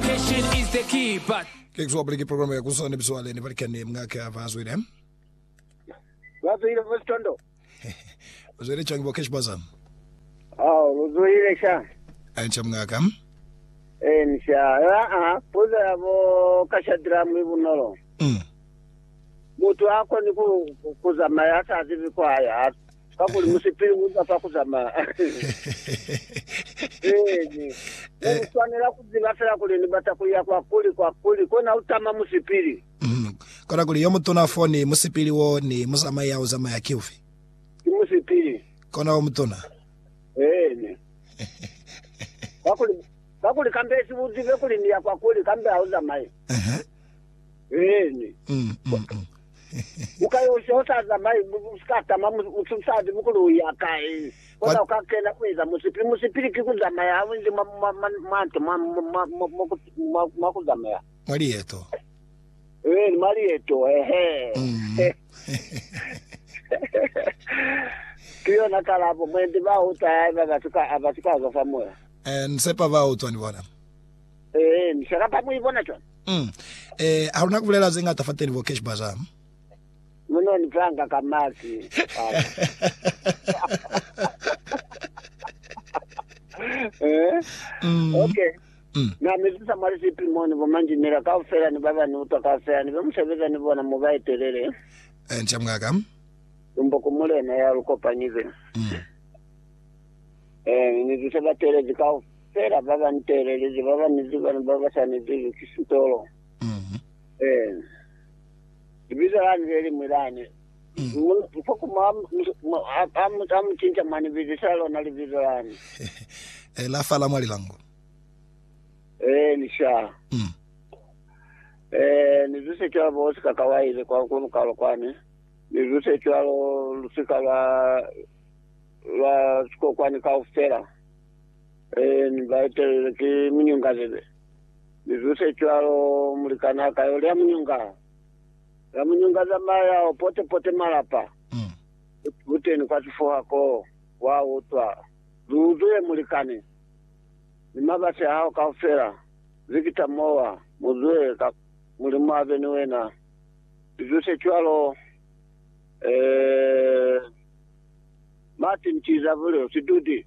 Patience is the key, but. Ke kuzwa puli ki program ya kuzo ne bizwa leni balikani mngaka ba zwile. Ba zwile bo Sitondo. Ba zwile changi bo Cash Baza. Oh, lu zwile sha. Ancha mngaka. Eh, ni sha. Ya, ah, puza ya bo Kashadra mwi bunolo. Mm. Mutu a koni ku kuzamaya sa zibi kwa ya. Kakuli musipili u za fa ku zamaya. Eeni. Ne lu swanela ku ziba fela kuli ni bata ku ya kwa kuli, kwa kuli, kona u tama musipili. Kona kuli yo mutuna fo ni musipili wo ni muzamai ya u zamaya ki ufi? Ki musipili. Kona o mutuna. Eeni. Kakuli, kakuli kambesiba u zibe kuli ni ya kwa kuli, kambe ha u zamayi. Eeni. Ukayoca usaza mai mi usikatama musali mukulu ya kai, kona ukakena kueza musipi. Musipili ki kuzamaya haunzi mwa nto mwa kuzamaya. Mwa lieto. Ee, ni mwa lieto, eehe. Ki yona kalabo. Mwendi bautwa haiba basikaza fa moya. Ee, ni sepa bautwa ni bona. Ee, ni selapa ku ibona cwana. Mm. Eh, ha luna kubulela ze ngata fateni bo Cash Bazaar. Mm. Muno ni panga ka mazi. Eh? Mm. Okay. Mm. Na mezisa mwali sipi moni bo manjinela ka ufela ni baba ni utwa ka ufela ni be musebeza ni bona mu ba etelele. Eh, ncha mngaka. Umbo kumulena ya lukopanyize. Mm. Eh, ni zise batelezi ka ufela. Fela ba ba nteelelezi ba banezi bana ba ba sa nezezwi ki sitolo. Ee. Libizo lani le liñwi lani. Mukuma a mu cinca mwa ni bizisa lona libizo lani. Ee, la fa la mwa lilango. Ee, ni sha. Ee, ni zuse cwalo bo Oscar Kawaile kwa ku Lukalo kwani. Ni zuse cwalo lusika lwa, lwa sikokwani kaufela. Ee, mi ba etelelwe ki munyunga libe. Mi zu se cwalo, mulikan'a a ka yo lya munyunga. Lya munyunga zamaya o pote-pote malapa. Buteni kwa sifuha koo, wa utwa. Zu uzwile mulikani, ni mabasi a hao kaufela, Victor mowa, mu zwe, ka Mulimu a be ni wena. Mi zu se cwalo, ee, Martin Tizabulyo, sidudi.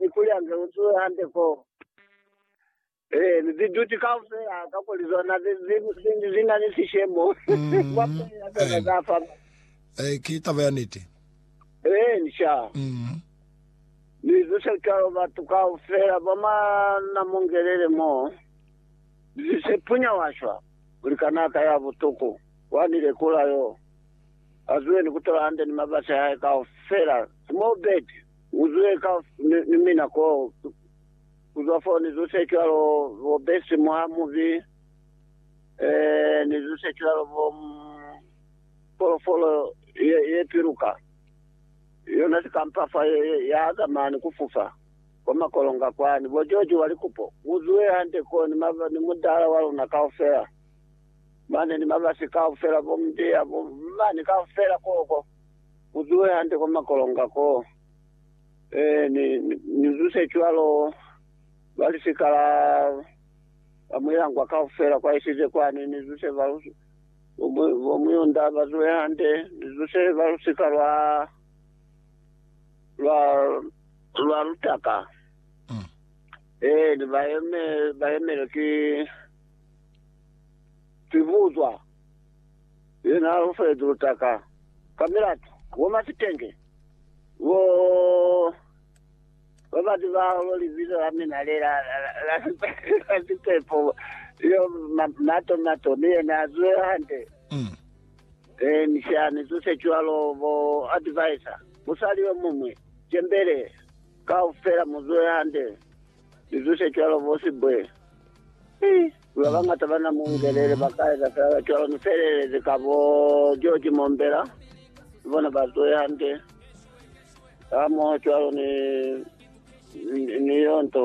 ni kuli a ze utuwe hande ko ziduti kaufela, kakuli zona zi na ni sishemo kwa pili ya zona za fa mani. Ee, ki taba ya niti. Ee, inca. Ni zuse cwalo batu kaufela ba mwa Namongelele mo, zise punya wa shwa kuli kanaka ya butuku wa ni lekula yo, a zuwe ni kutola hande ni mabasi a hae kaufela, small bird. Uzwe ka ni mina ko kuzwa fo ni zuse kilalo bo besi mwa mubi ni zuse kilalo bo folofolo ye piluka yona sikampafa ya azama ni kufufa kwa makolonga kwani bo George wa likupo uzwe hande ko ni mudala wa luna kaufela mane ni mabasi kaufela bo mdiya bo mani kaufela koko Mu zuhe hande kwa makolonga ko. Ee, ni, ni, ni zuse cwalo, ba lisika la ba muilangwa kaufela kwa isize kwani, ni zuse ba lu, bo, mu, bo Muyunda ba zuhe hande, ni zuse ba lusika lwa, lwa, lwa lutaka. Ee, ni ba yeme, ba yemelwe ki, ki buzwa. Ye na holofalezi lutaka ka milatu, bo masitenge, bo ba ba zibahaho libizo la mina le la, la, la, la, la sipepo, yo ma, mato, mato, ni yena a zwe hande. Mm. E, ni shani, zose cwalo, bo advisor, musali yo mumwe, jembele, kaufela mu zwe hande, ni zose cwalo, bo sibwe. Eh. Mi babañata bana mungelele bakaeza feela cwalo, mi feelelezi ka bo George Mombela, ni bona bazwehe hande hamoho cwalo ni, ni, ni yo nto.